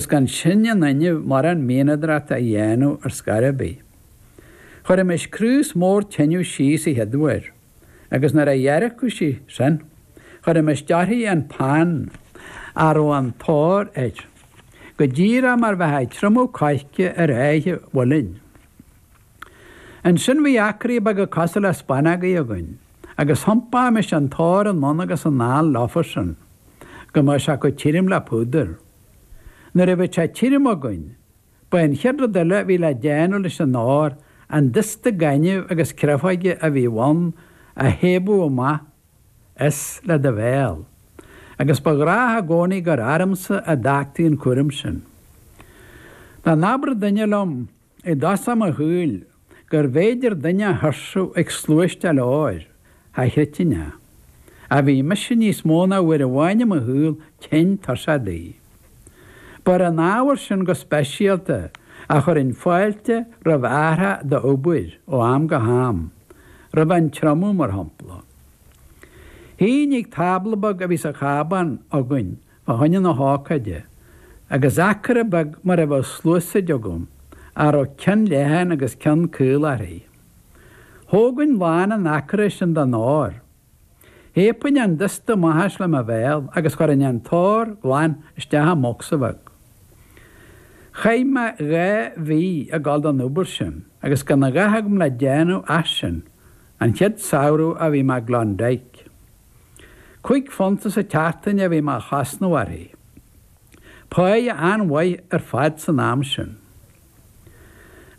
Is gan sinn in innimh mórán mianadóireachta a dhéanamh ar scor ar bith. Chuirimis craos mór tineadh síos a chéaduair, agus nuair a dheargadh sí sin, chuirimis dearcthaí an pan, a raibh an t-ór air, go díreach mar bheitheá ag triomú coirce ar áith mhuilinn. Ansin bhí acraí beaga cosúil le spanógaí againn, agus thiompaímis an t-ór anonn agus anall leofa sin, go mbeadh sé chomh tirim le púdar. Nuair a bhíodh sé tirim againn, ba é an chéad rud eile a bhí le déanamh leis an ór, an dusta gainimh agus créafóige a bhí ann, a shiabadh amach as le do bhéal. Agus ba ghnách i gcónaí gur ormsa a d'fhágtaí an cúram sin. Dá n-abradh duine liom I dtosach mo shaoil, gurbh fhéidir duine a thuirsiú ag sluaisteáil óir, cha chreidfinn é. Ach bhí mise níos mó ná uair amháin i mo shaol tinn tuirseach de. Ba ar an ábhar sin go speisialta a chuirinn fáilte roimh athrach d'obair ó am go ham, roimh an triomú, mar shampla. Shuínn ag tábla beag a bhí sa chábán againn Fá choinne na hócáide, agus acra beag mar a bheadh sluasaid agam, a raibh ceann leathan agus ceann caol uirthi. Thógainn lán an acra sin den ór. Shiabainn an dusta amach as le mo bhéal agus chuirinn an t-ór glan isteach i mbocsa bheag. Chaith mé dhá mhí ag dul don obair sin agus gan a dhath agam le déanamh ach sin, an chéad samhradh a bhí mé i gClondyke. Cúig phunta sa tseachtain a bhí mé a chosnamh uirthi. Páighe an-mhaith ar fad san am sin.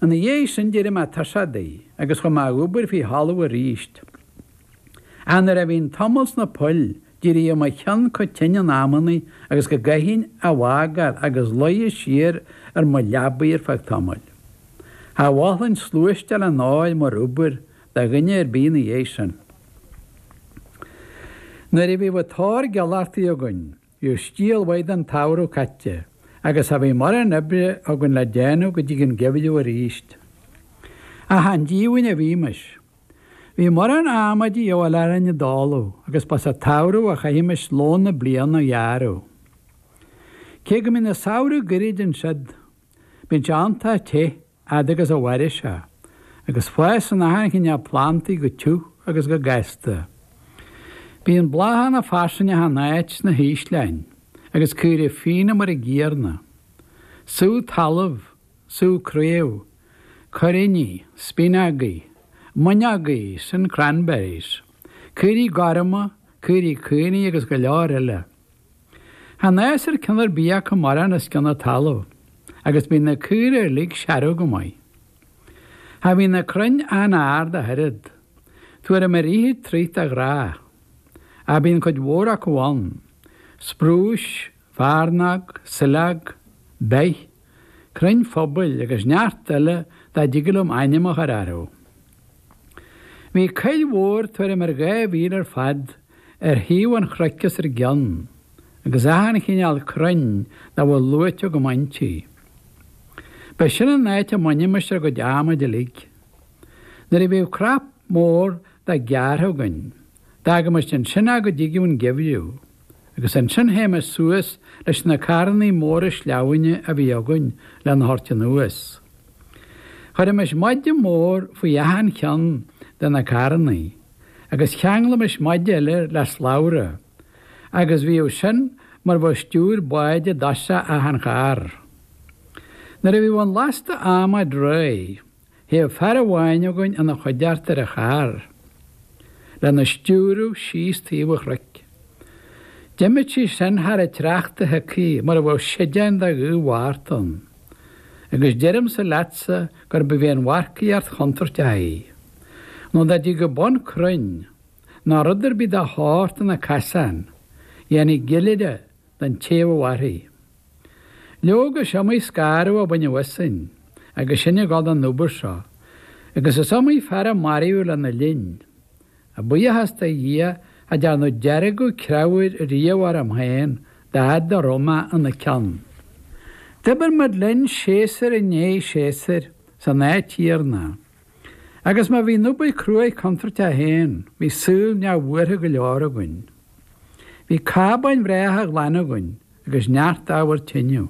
Ina dhiaidh sin d'éirigh mé tuirseach di agus chuaigh mé a dh'obair faoi thalamh aríst. Ach nuair a bhínn tamall sna poill d'éiríodh mo cheann chomh tinn in amannaí agus go gcaithfinn a bhfágáil agus luí siar ar mo leabaidh ar feadh tamaill. Cha mholfainn sluaisteáil an óir mar obair do dhuine ar bith ina dhiaidh sin. Nuair a bhíodh an t-ór gealbhartaí againn, bhíodh stiall mhaith den tsamhradh caite agus cha bhíodh mórán oibre againn le déanamh go dtí an geimhreadh arís. Ach chan díomhaoin a bhímis. Bhí mórán adhmaid de dhíobháil orainn i dtólamh agus ba sa tsamhradh a chaithimis lón na bliana a ghearradh. Cé go mbíonn an samhradh goirid ansiud, bíonn sé iontach te fhad agus a mhaireas sé, agus fásann achan chineál plandaí go tiubh agus go gasta. Bíonn bláthanna fairsing achan áit sna hísleáin, agus caoraí fíona mar an gcéanna. Sú talamh, sú craobh, cuiríní, spíonógaí, mónógaí, sin cranberries, caoraí gorma, caoraí caonaigh agus go leor eile. Chan fhásann ceann ar bith acu mórán os cionn an talaimh, agus bíonn na caora uilig searbh go maith. Cha bhíonn na crainn an-ard ach oiread. Tuairim ar fhichid troigh de ghnáth. Ach bíonn cuid mhór acu ann, sprús, fearnóg, saileog, beith. crainn phobail agus neart eile dá dtigeadh liom ainm a chur orthu. Bhí coill mhór tuairim ar dhá mhíle ar fad ar thaobh an chnoic os ár gcionn agus achan chineál crainn dá bhfuil luaite agam inti. Ba sin an áit a mbainimis ár gcuid adhmaid uilig. Nuair a bhíodh cnap mór de gearrtha againn, d'fhágaimis ansin é go dtigeadh an geimhreadh. agus ansin théimis suas leis na carrannaí móra sleamhnáin a bhí againn lena thabhairt anuas. Chuirimis maide mór faoi achan cheann de na carrannaí, agus cheanglaimis maide eile le slabhra, agus bhíodh sin mar bheadh stiúir báid i dtosach achan charr. Nuair a bhíodh an lasta adhmaid réidh. Théadh fear amháin againn ina choigeart ar an charr, lena stiúradh síos taobh an chnoic. D'imíodh sí sin thar an tsneachta shiocaithe mar a bheadh séideán de ghaoth Mhárta ann, agus deirimse leatsa gurbh í an mharcaíocht chontúirteach í, nó dá dtigeadh bun crainn, ná rud ar bith dá shórt ina casán, dhéanfaí gile de. den té a bheadh uirthi. Leoga, is iomaí scanradh a baineadh asainn agus sinn ag gabháil don obair seo, agus is iomaí fear a maraíodh lena linn. A bhuíochas do Dhia, cha dearnadh deargadh creabhair riamh orm féin dá fhaid a raibh mé ina ceann. D'oibir muid linn séasúr i ndiaidh séasúir san áit chéanna. Agus má bhí an obair cruaidh contúirteach féin, bhí saol neamhbhuartha go leor againn. Bhí cábáin bhreátha ghlana againn agus neart ábhar tineadh.